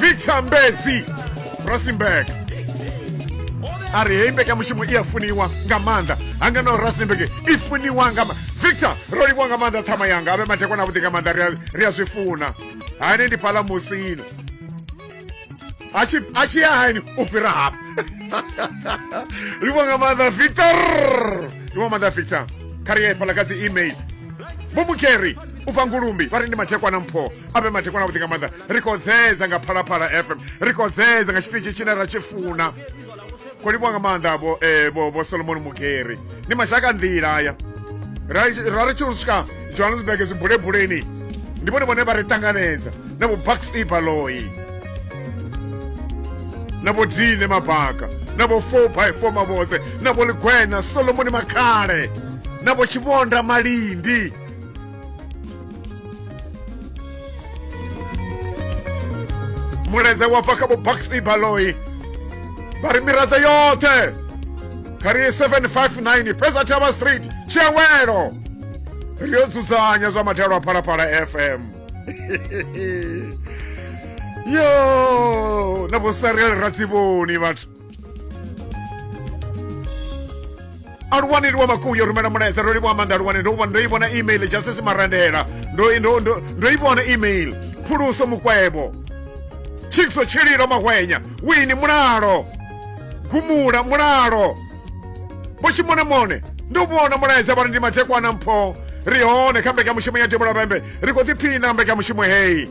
victor mbedzi rustenburg a ri heyi mbekanyamushumo i a funiwa nga maanḓa hanga na rustenburg i funiwa nga ma victor ro livhiwa nga maanḓa ṱhama yanga a vhe mathekwana avhuḓi nga maanḓa ri a- ri a zwi funa hani ndi phala musina a tshi a tshi ya hani u fhira hafha ri vho nga maanḓa victor ri vho maanḓa victor kha ri ye fhala kha dzi email vho mukeri u bva ngulumbi vha ri ndi mathekwana mpho a vhe mathekwana vhuḓi nga maanḓa ri khou dzedza nga phalaphala fm ri khou dzedza nga tshiṱitshi tshine ra tshi funa kho livhuwa nga maanḓa vho eh, vho vho solomoni mugeri ndi mashaka nḓila aya ra ra ri tshi u swika johannesburg zwibulebuleni ndi vhone vhone vha ri ṱanganedza na vho bucks e baloi na vho dine mabaka na vho four by four mavhotse na vho ligwenya solomoni makhale na vho tshivhonda malindi mulaedza wa bva kha vho baxley baloi vha ri miraḓo yoṱhe kha ri 759 pesa thavha street tshiawelo ri yo dzudzanya zwa mathelo a phalaphala fm yo na vho sarel ratsivoni vhathu aluwani liwa makuyo rumela mulaedza ndo livha maanḓa aluwani ndo ndo ivhona email justice marandela ndo ndo ndo ndo ivhona email phuluso mukwebo chikso tshililo mahwenya wini mulalo gumula mulalo pochimonamone ndo vhona mulaedza vhari ndi mathekwana mpho ri hone kha mbekanyamushumo ya tevhula pembe ri khou ḓiphina mbekanyamushumo heyi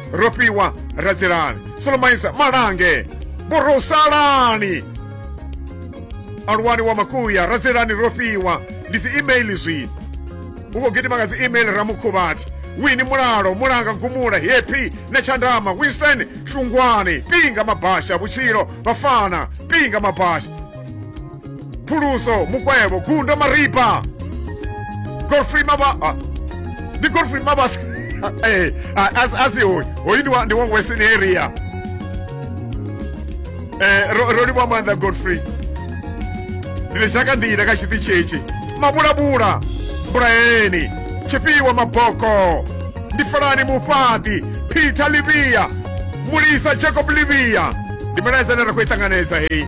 rofhiwa radzilani solomaisa malange borosalani aluwani wa makuya radzilani rofhiwa ndi dzi email zwino uko gidima nga dzi email ramukhuvhati wini mulalo mulanga gumula hepi na tshandama winston hlungwani pinga mabasha vhutshilo vafana pinga mabasha phuluso mukwevho gundo maripa godfrey maba ah, ndi godfrey mabas eh, ah, as- asi hoyu hoyu ndi wa- ndi wa western area Eh, ro ro livhuwa maanḓa godfrey ndi ri shaka nḓila kha tshiṱi tshitshi mabulabula mbulaeni tshifhiwa maboko ndi falani mufhaṱi peter livia mulisa jacob livia ndi milaedza ine ra khou i ṱanganedza heyi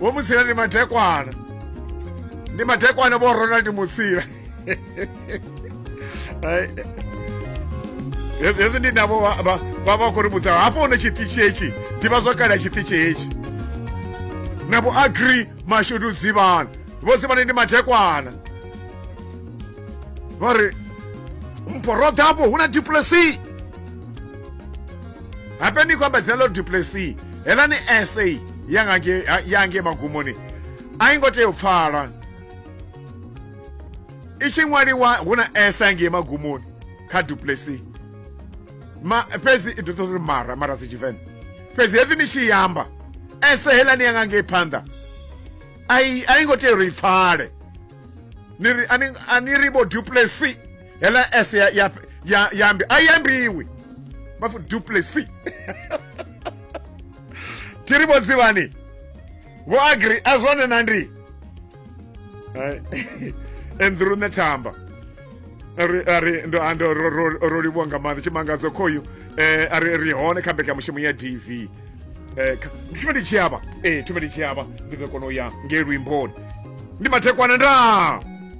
vho musila ndi mathekwana ndi mathekwana vho ronald musila hezwi ndi navho vha vha khou ri vhudza hafho hune tshiṱitshi hetshi ḓivha zwo kale tshiṱitshi hetshi na vho agri mashudu dzivhana vho dzivhana ndi mathekwana vha ri mpho roḓa hafho hu na diplesi hape ni kwamba dzina ḽo duplessi heḽa ni essay yange magumoni a i ngo tea u pfala i tshi ṅwaliwa hu na esa ngei magumoni kha duplessi ma fhedzi i ḓo uri mara mara si tshivenḓa fhedzi hezwi ni tshi yamba ese heḽa ni yanga ngei phanḓa a i ngo tea uri i pfale ni ri a ni ri vho duplessi hela s ya, ya, ya, yambi a yambiwi va fu duplessi ti ri vo dzivani vo agri a zwone na ndi andrew nethamba ari ari ndo ando ro- ro- ro livhuwa nga maanḓa tshimangadzo khoyu eh, ari ri hone kha mbekanyamushumo ya dv Eh, kha- thume ndi tshiavha ee thume ndi tshiavha ndi ḓo kona u ya ngei luimboni ndi mathekwana ndaa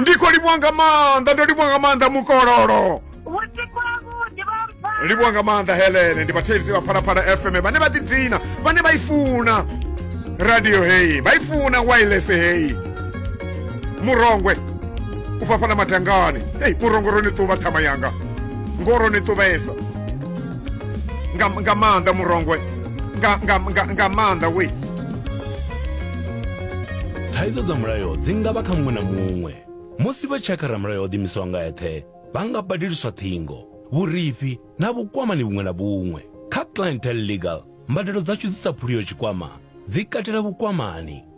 ndiko livwa nga maanḓa ndo livwa nga maanḓa mukololo livwa nga maanḓa helene ndi vhathetshelesi vha phalaphala fm vhane vha ḓidina vhane vha i funa radio heyi vha i funa wireless heyi murongwe u fafhala matangani heyi murongwe ro ni ṱuvha ṱhama yanga ngo ro ni ṱuvhesa nga, nga maanḓa murongwe nga, nga, nga, nga maanḓa we thaidzo dza mulayo dzi nga vha kha muṅwe na muṅwe musi vha tshi ya kha ramulayo o ḓimisaho nga eṱhe vha nga badeliswa ṱhingo vhurifhi na vhukwamani vhuṅwe na vhuṅwe kha clientel legal mbadelo dzashu dzi sa phuliyo tshikwama dzi katela vhukwamani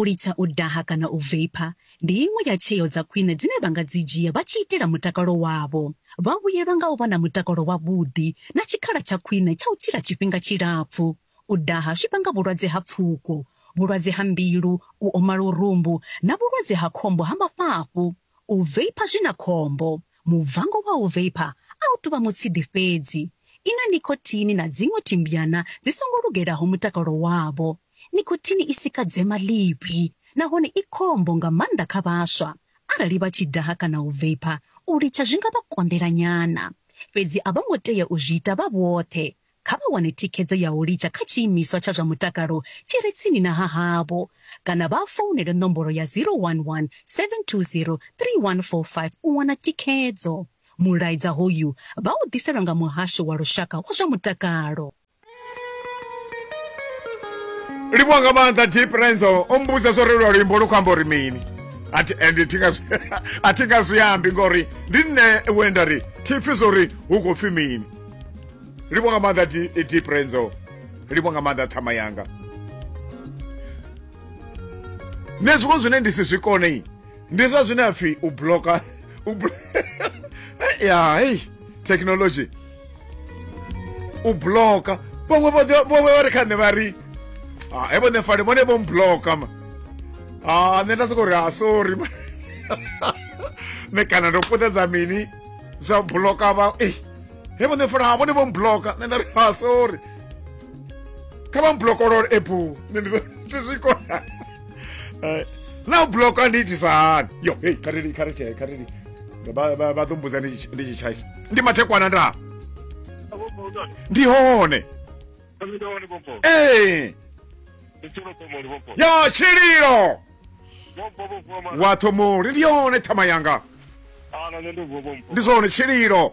U litsha u daha kana u veipha ndi iṅwe ya tsheo dza khwine dzine vha nga dzi dzhia vha tshi itela mutakalo wavho. Vha vhuyelwa nga u vha na mutakalo wavhuḓi na tshikhala tsha khwine tsha u tshila tshifhinga tshilapfu. U daha zwi vhanga vhulwadze ha pfuko, vhulwadze ha mbilu, u oma lurumbu na vhulwadze ha khombo ha mafhafhu. U veipha zwi na khombo. Mubvango wa u veipha a u tou vha mutshidi fhedzi. I na nikhothini na dziṅwe thimbyana dzi songo lugelaho mutakalo wavho. Nikhothini i sika dzema ḽivhi nahone i khombo nga maanḓa kha vhaswa. Arali vha tshi daha kana u veipha, u litsha zwi nga vha konḓela nyana. Fhedzi a vho ngo tea u zwi ita vha vhoṱhe. Kha vha wane thikhedzo ya u litsha kha tshiimiswa tsha zwa mutakalo tshi re tsini na ha havho kana vha founele nomboro ya 011 720 3145 u wana thikhedzo. Mulaedza hoyu vha u ḓiselwa nga Muhasho wa Lushaka wa zwa Mutakalo. livhuwa nga maanḓa deep renzo o mmbudza zwo relwa luimbo lu khou amba uri mini and a thi nga zwi ambi ngori ndi nṋe wenda ri thi pfi zwo ri hu khou pfi mini livhuwa nga maanḓa deep renzo livhuwa nga maanḓa ṱhama yanga nṋe zwiṅwe zwine ndi si zwi kone ndi zwa zwine a pfhi u bloka u ya hei thekhinolodzhi u bloka vhaṅwe vhoe vha ri kha nṋe vha ri ah, evo nṋe fale vhone vho mbloka ma ah, nṋe nda soko ri a ah, sorry nṋe kana ndo puṱedza mini zwa bloka vha e evo nṋe fale vhone vho mbloka nṋe nda ri a sorry kha vha mblokolole ebu nṋe ndi zwi kona eh, na bloka ndi itisa hani yo hei khareli khareli khareli vha ḓo mbudza ndi tshi tshaisa ndi mathekwana nda ndi hone ee yo tshililo wathomoli ndi yone thama yanga ndi zwone tshililo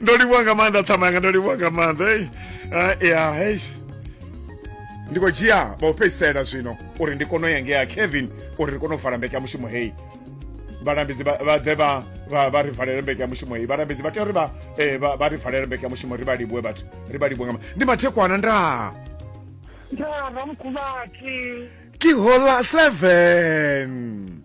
ndo livhuwa nga maanḓa ṱhama yanga ndo livhuwa nga maanḓa ei Ah, ya hei ndi khou dzhia vha u fhedzisela zwino uri ndi kone u ya ngea kevin uri ri kone u vala mbeke ya mushumo heyi vhalambedzi vha vha ḓe vha vha vha ri valele mbeke ya mushumo heyi vhalambedzi vha tea uri vha eh, vha vha ri valele mbeke ya mushumo ri vha livhuwe vhathu ri vha livhuwe nga ma- ndi mathekwana ndaa Ndava mkhuvati. ke hola seven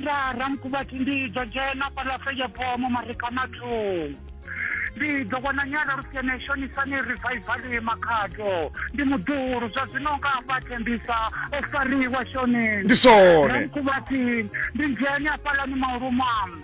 nda ramukuvhati ndi ḓo dzhena fhaḽa feyeboo mo marikanathong ndi ḓo vhona nyala lusiene shonisani rivhaivali makhato ndi muḓuhulu zwa zwino nga afha thembisa o fariwa shoni ndi sone ramukuvhati ndi dzhene afhaḽani maulumam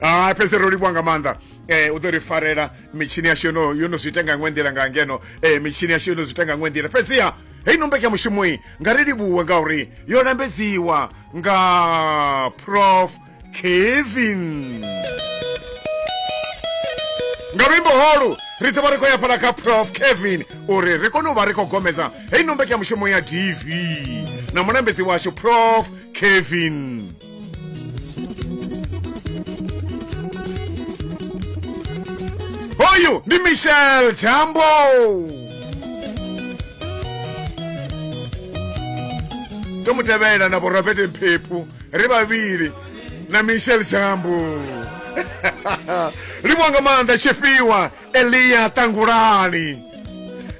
a fhedzi ro livhuwa nga maanḓa um u ḓo ri farela mitshini yashu yono yo no zwi ita nga ṅwe nḓila nga ngeno um mitshini yashu yo no zwi ita nga ṅwe nḓila fhedziha heyi no mbekanyamushumoyi nga ri livhuwe ngauri yo lambedziwa nga prof kevin nga luimbo holu ri ḓovha ri khou ya fhala kha prof kevin uri ri kone u vha ri khou gomedza heyi no mbekanyamushumo ya dv na mulambedzi washu prof kevin hoyu ndi michel jambo tomutevhela na vhorobert mphephu ri vhavhili na michel jambo livho nga maanḓa tshifhiwa eliya ṱangulani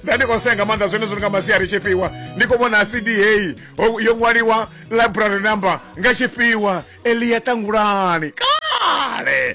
nda ndi khou senga maanḓa zwenezwo ndi nga masiari tshifhiwa ndi khou vhona cd heyi ho- yo ṅwaliwa library number nga tshifhiwa elia ṱangulani kale